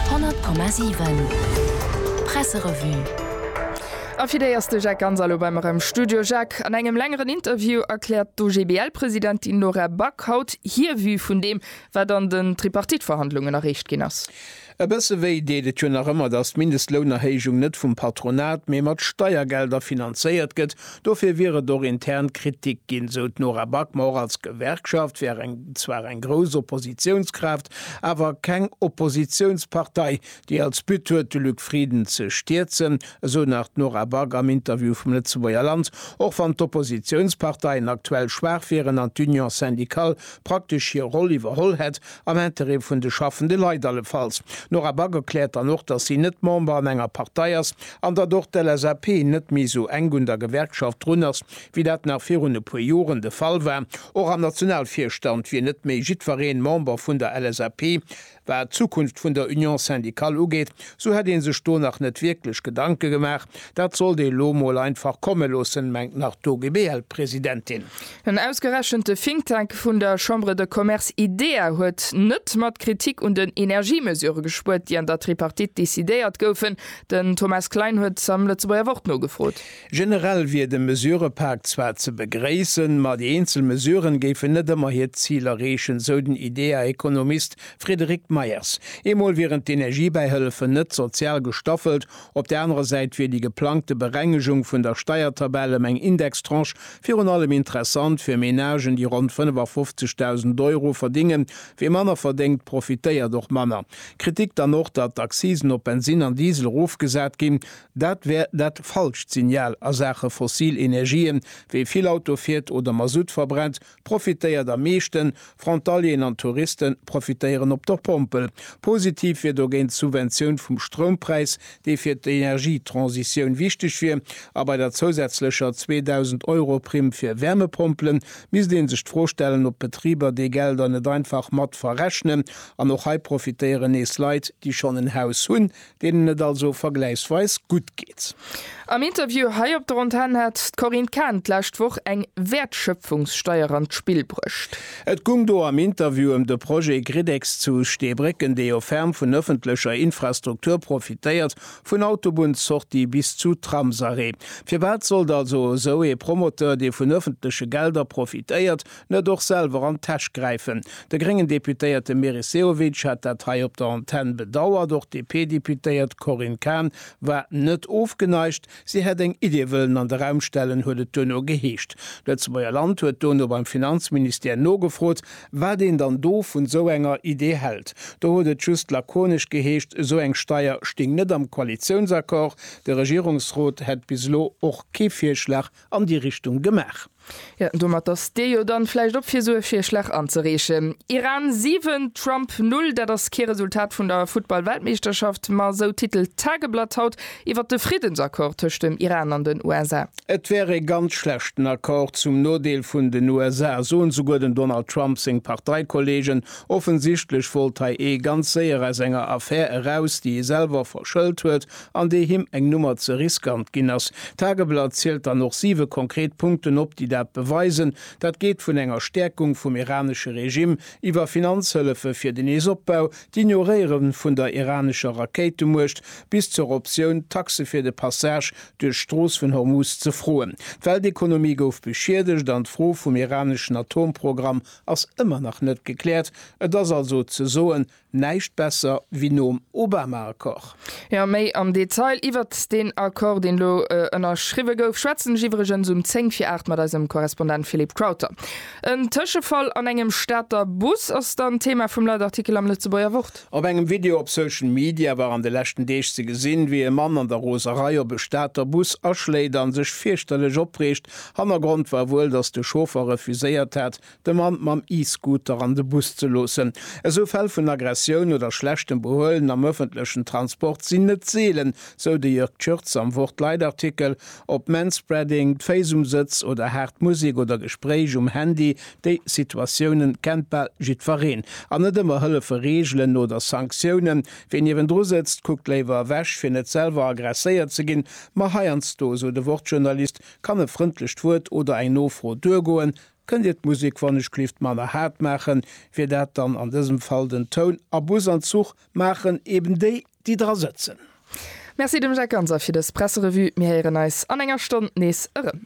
100,7 Presserevue A fir déi ass de Jacques Ganz elo bei mer am Studio. Jacques, an engem längeren Interview erkläert d'OGBL-Presidentin Laura Back haut hir Vue vun deem, wat an den Tripartite-Verhandlungen erreecht ginn ass. E bësse wéi deet et jo nach ëmmer, datt d'Mindestlounerhéijung net vum Patronat, mee mat Steiergelder finanzéiert gëtt Dofir wier et och intern Kritik ginn, sou d'Nora Back. Ma och als Gewerkschaft wär eng zwar eng grouss Oppositiounskraaft, awer keng Oppositiounspartei, déi als But huet, de Luc Frieden ze stierzen, esou nach d'Nora Back am Interview vum Lëtzebuerger Land. Och wann d'Oppositiounsparteien aktuell schwaach wieren an d'Union syndicale praktesch hir Roll iwwerholl hätt, Am Intérêt vun de schaffende Leit allefalls. D'Nora Back erkläert dann och, datt si net Member an enger Partei ass an datt och d'LSAP net méi esou enk un der Gewerkschaft drun ass, wéi dat nach virun e puer Joren de Fall war. Och am Nationalvirstand wier net méi jiddwereen Member vun der LSAP. Wat d'Zukunft vun der Union syndicale ugeet, esou hätt ee sech do nach net wierklech Gedanke gemaach. Dat sollt ee lo mol einfach komme loossen, mengt nach d'OGBL-Presidentin. En ausgerechente Think Tank vun der Chambre de Commerce IDEA huet net mat Kritik un den Energiemesure gespuert, déi an der Tripartite decidéiert goufen. Den Thomas Klein huet am Lëtzebuerger Wort nogefrot. Generell wier de Mesurepak zwar ze begréissen, ma déi eenzel Mesuren géifen net ëmmer hiert Zil erreechen, sou den IDEA-Ekonomist Frédéric Meyers. Eemol wieren d'Energiebäihëllefen net sozial gestaffelt Op der anerer Säit wier déi geplangte Berengegung vun der Steiertabell ëm eng Indextranche virun allem interessant fir Menagen, déi ronn 55.000 Euro verdingen. Wie manner verdéngt, profitéiert och manner. Kritik dann och, datt d'Accisen op Bensin an Diesel erofgesat ginn. Dat wär dat falscht Signal a Saache fossil Energien. Wie vill Auto fiert oder Masutt verbrennt, profitéiert am meeschten, Frontalieren an Touriste profitéieren op der Pompel. Positiv wier dogéint d'Subventioun vum Stroumpräis, dee fir d'Energietransitioun wichteg wier, a bei der zousätzlecher 2.000 Euro Primm fir Wärmepompelen misst ee sech d'Fro stellen, ob d'Betriber déi Gelder net einfach mat verrechnen. An och hei profitéieren nees Leit, déi schonn en Haus hunn, deenen et also vergläichsweis gutt geet. Am Interview hei op der Antenn hat d'Corinne Cahen d'lescht Woch eng Wäertschöpfungssteier an d'Spill bruecht. Et gung do am Interview ëm de Projet Gridex zu Steebrécken, dee jo ferm vun ëffentlecher Infrastruktur profitéiert, vun Autobunnssortie bis zu Tramsarrêt. Firwat sollt also esou ee Promoteur, dee vun ëffentleche Gelder profitéiert, net och selwer an d'Täsch gräifen. De gréngen Deputéierte Meris Sehovic hat dat hei op der Antenn bedauert. Och d'DP-Deputéiert Corinne Cahen war net ofgeneigt. Si hätt eng Idee wëllen an de Raum stellen, huet et duerno geheescht. D'Lëtzebuerger Land huet dono beim Finanzministère nogefrot, wat een dann do vun esou enger Idee hält. Do huet et just lakonesch geheescht, esou eng Steier sting net am Koalitiounsaccord. De Regierungsrot hätt bis elo och kee Virschlag an déi Richtung gemaach. Jo, domat ass Dir jo dann vläicht op fir sou e Virschlag anzereechen. Iran 7, Trump 0, dat ass kee Resultat vun der Futtball-Weltmeeschterschaft, ma sou titelt d'Tageblatt haut iwwert de Friddensaccord tëscht dem Iran an den USA. Et wär ee ganz schlechten Accord zum Nodeel vun den USA, soen souguer dem Donald Trump seng Parteikollegen. Offensichtlech wollt hei ee ganz séier aus enger Affär eraus, déi ee selwer verschëlt huet, an déi him eng Nummer ze riskant ginn ass. D'Tageblatt zielt dann och siwe konkret Punkten op, déi dat beweisen. Dat geet vun enger Stäerkung vum iranesche Regime, iwwer Finanzhëllefe fir den Neesopbau, d'Ignoréiere vun der iranescher Rakéitemuecht bis zur Optioun, Taxe fir de Passage duerch d'Strooss vun Hormuz ze froen. D'Weltekonomie gouf beschiedegt an d'Fro vum iraneschen Atomprogramm ass ëmmer nach net gekläert. Et ass also ze soen, Näischt besser wéi nom Obama-Accord. Jo, méi am Detail iwwert deen Accord, deen elo ënnerschriwwe gouf, schwätzen ech iwwregens um 10 vir 8 mat eisem Korrespondent Philippe Crowther. En Tëschefall an engem Stater Bus ass dann d'Thema vum Leitartikel am Lëtzebuerger Wort. Op engem Video op Social Media war an de leschten Deeg ze gesinn, wéi e Mann an der Roserei op e Stater Bus aschléit an sech fierchterlech opreegt. Hannergrond war wuel, datt de Chauffer refuséiert hat, de Mann mam E-Scooter an de Bus ze loossen. Esou Fäll vun Aggressioun oder schlechtem Behuelen am ëffentlechen Transport sinn net seelen, sou de Jörg Tschirtz am Wort-Leit-Artikel. Ob Manspreading, d'Féiss um Sëtz oder haart Musek oder Gespréich um Handy, déi Situatioune kennt bal jiddwereen. An net ëmmer hëllefe Reegelen oder Sanktiounen. Ween niewendru sëtzt, kuckt léiwer ewech, fir net selwer aggresséiert ze ginn. Ma heiansdo, sou de Wort-Journalist, kann e frëndlecht Wuert oder eng Nofro duergoen. Kënnt Dir d'Musik wannechlift manner haart maachen, wier dat dann an dësem Fall den Toun? A Bus an Zuch maachen eben déi, déi dra sëtzen. Merci dem Jacques Ganser fir dës Presserevue. Mir héieren eis an enger Stonn nees erëm.